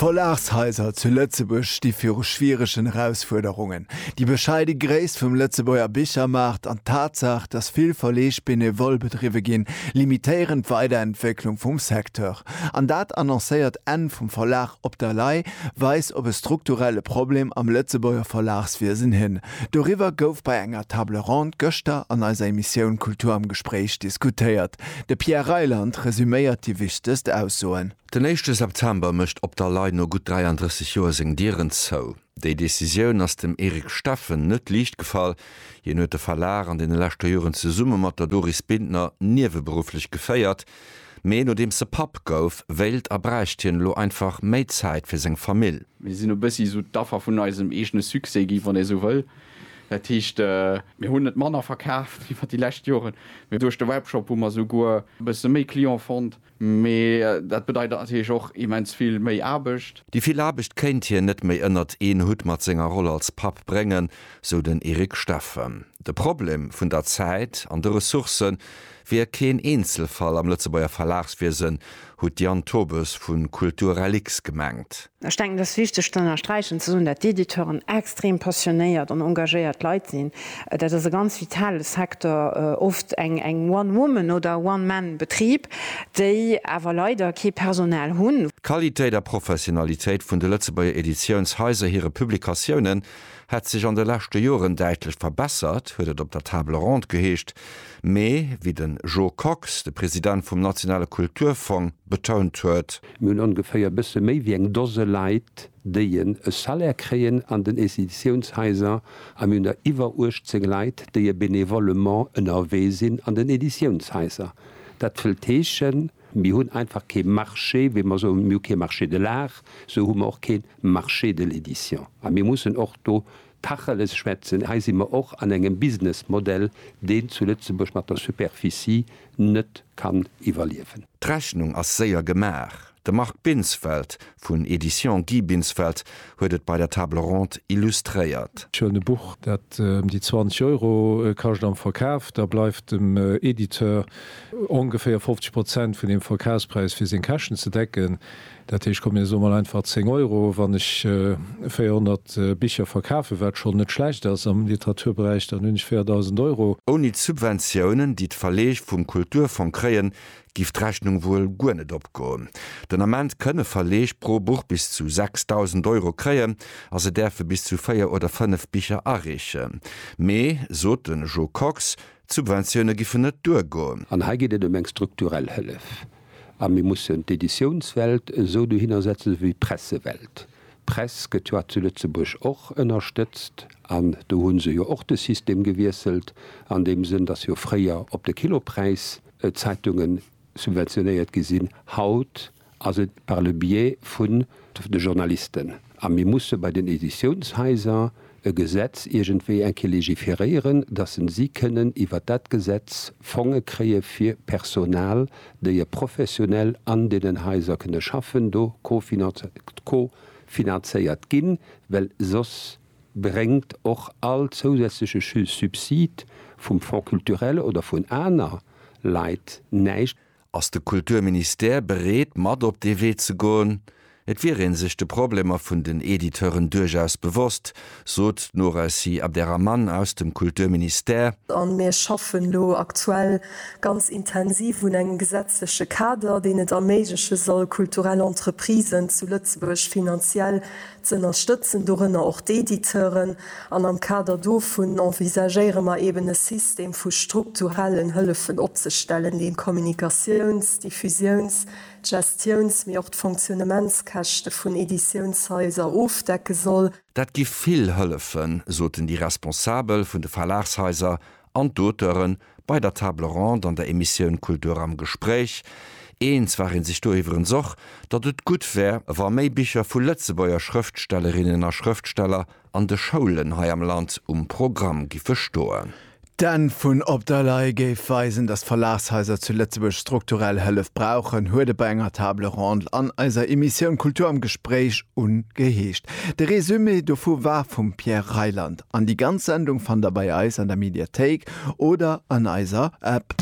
D'Verlagshaiser zu Lëtzebuerg sti viru schwieregen Erausfuerderungen. Déi bescheide Gréisst vum Lëtzebuerger Bichermaart an d'Tatsaach, datt vill Verleeg benevole bedriwwe ginn, limitéieren d'Weiderentwécklung vum Secteur. An dat annoncéiert Enn vum Verlag op der Lay weist op e strukturelle Problem am Lëtzebuerger Verlagswiesen hin. Doriwwer gouf bei enger Table ronde gëschter an eiser Emissioun Kultur am Gespréich diskutéiert. De Pierre Reyland resuméiert déi wichtegst Aussoen. Den éischte September mécht Op der Lay no gutt 33 Joer seng Dieren zou. Déi Decisioun ass dem Eric Steffen net liicht gefall. Hien huet de Verlag an deene leschter Joren zesumme mat der Doris Bintner nieweberufflech geféiert. Mee nodeems e Papp gouf, wéilt a bräicht hien elo einfach méi Zäit fir seng Famill. Mir sinn e bëssi esou d'Affer vun eisem eegene Succès gi, wann ee sou wëll. Dat heescht, mir hunn net manner verkaaft iwwer déi lescht Joren, mee duerch de Webshop hu mer souguer e bësse méi Client fonnt. Mee dat bedeit natierlech och immens vill méi Aarbecht. Déi vill Aarbecht kéint hien net méi ënnert een Hutt mat senger Roll als Papp bréngen, sou den Eric Steffen. De Problem vun der Zäit an de Ressourcë wier keen Eenzelfall am Lëtzebuerger Verlagswiesen, hutt d'Diane Tobes vu Kultur Reliques gemengt. Ech denken, et ass wichteg ze ënnersträichen, ze soen, datt d'Editeuren extrem passionéiert an engagéiert Leit sinn. Dat ass e ganz vitale Secteur, oft eng One Woman oder One Man Betrib, déi awer leider kee Personal hunn. D'Qualitéit a Professionalitéit vun de Lëtzebuerger Editiounshaiser hire Publikatiounen hätt sech an de leschte Joren däitlech verbessert, huet et op der Table Ronde geheescht. Mee, wéi den Joe Kox, de President vum nationale Kulturfong, betount huet, Mir hunn ongeféier e bësse méi wéi eng Dose Leit, déien e Salaire kréien an den Editiounshaiser a mir hunn der iwwer 18 Leit, déie benevollement ënnerwee sinn an den Editiounshaiser. Dat wëllt heeschen, mir hunn einfach kee Marché, wéi mer soen, mir hu kee Marché de l'art, esou hu mer och kee Marché de l'édition. A mir mussen och do Tacheles schwätzen, hei si mer och an engem Businessmodell, deen zu Lëtzebuerg mat der Superficie net kann iwwerliewen. D'Rechnung ass séier gemaach, de Marc Binsfeld vun Editions Guy Binsfeld huet et bei der Table ronde illustréiert. Schön e Buch, dat em déi 20 Euro kascht am Verkaf, da bleift dem Editeur ongeféier 50 Prozent vun deem Verkafspräis fir seng Käschten ze decken. Dat heescht, komm mir soe mol einfach 10 Euro, wann ech 400 Bicher verkafen, wat schonn net schlecht ass am Literaturberäich, dann hunn ech 4.000 Euro. Ouni d'Subventiounen, déi d'Verleeg vum Kulturfong kréien, giff d'Rechnung wuel guer net opgoen. Den Ament kënne Verleeg pro Buch bis zu 6.000 Euro kréien a se däerfe bis zu 4 oder 5 Bicher areechen. Mee, sot de Jo Kox, d'Subventioune giffen net duergoen. An hei geet et ëm eng strukturell Hëllef. A mir mussen d'Editiounswelt esou dohinner setzen, esou wéi d'Pressewelt. D'Press gëtt jo zu Lëtzebuerg och ënnerstëtzt an do hu se jo och de System gewiesselt an deem Sënn, datt jo fréier op de Kilopräis d'Zeitungen subventionéiert gi sinn. Haut ass et par le biais vun de Journalisten. A mir musse bei den Editiounshaiser e Gesetz iergendwéi eng Kéier légiféréieren, dass en si kënnen iwwert dat Gesetz Fonge kréie fir Personal, déi e professionell an deenen Haiser kënne schaffen, do co-finanzéiert ginn, well soss bréngt och all zousätzleche Subsid vum Fonds culturel oder vun aner Leit näischt. Ass de Kulturministère bereet mat op dee Wee ze goen? Et wier ee sech de Problemer vun den Editeuren duerchaus bewosst, sot d'Nouracy Abderrahmane aus dem Kulturministère. A mir schaffen elo aktuell ganz intensiv un engem gesetzleche Kader, deen et erméigleche soll, kulturell Entreprisen zu Lëtzebuerg finanziell z'ënnerstëtzen, dorënner och d'Editeuren, an am Kader dovun envisagéiere mer eben e System vu strukturellen Hëllefen opzestellen, deen d'Kommunikatiouns-, d'Diffusiouns-, d'Gestiouns-, mee och d'Fonctionnementskäschte vun Editiounshaiser ofdecke soll. Dat gi vill Hëllefen, soten déi Responsabel vun de Verlagshaiser an d'Auteuren Bei der Table Ronde an der Emissioun Kultur am Gespréich, eens war ee sech do iwwerens och, datt et gutt wär, wa méi Bicher vu Lëtzebuerger Schrëftstellerinnen a Schrëftsteller an de Schoulen hei am Land um Programm giffe stoen. D'Enn vun Op der Lay géif weisen, datt d'Verlagshaiser zu Lëtzebuerg strukturell Hëllef brauchen, huet et bei enger Table Ronde an eiser Emissioun Kultur am Gespréich ungeheescht. De Resumé dovu war vum Pierre Reyland. An déi ganz Sendung fannt der bei eis an der Mediathéik oder an eiser App.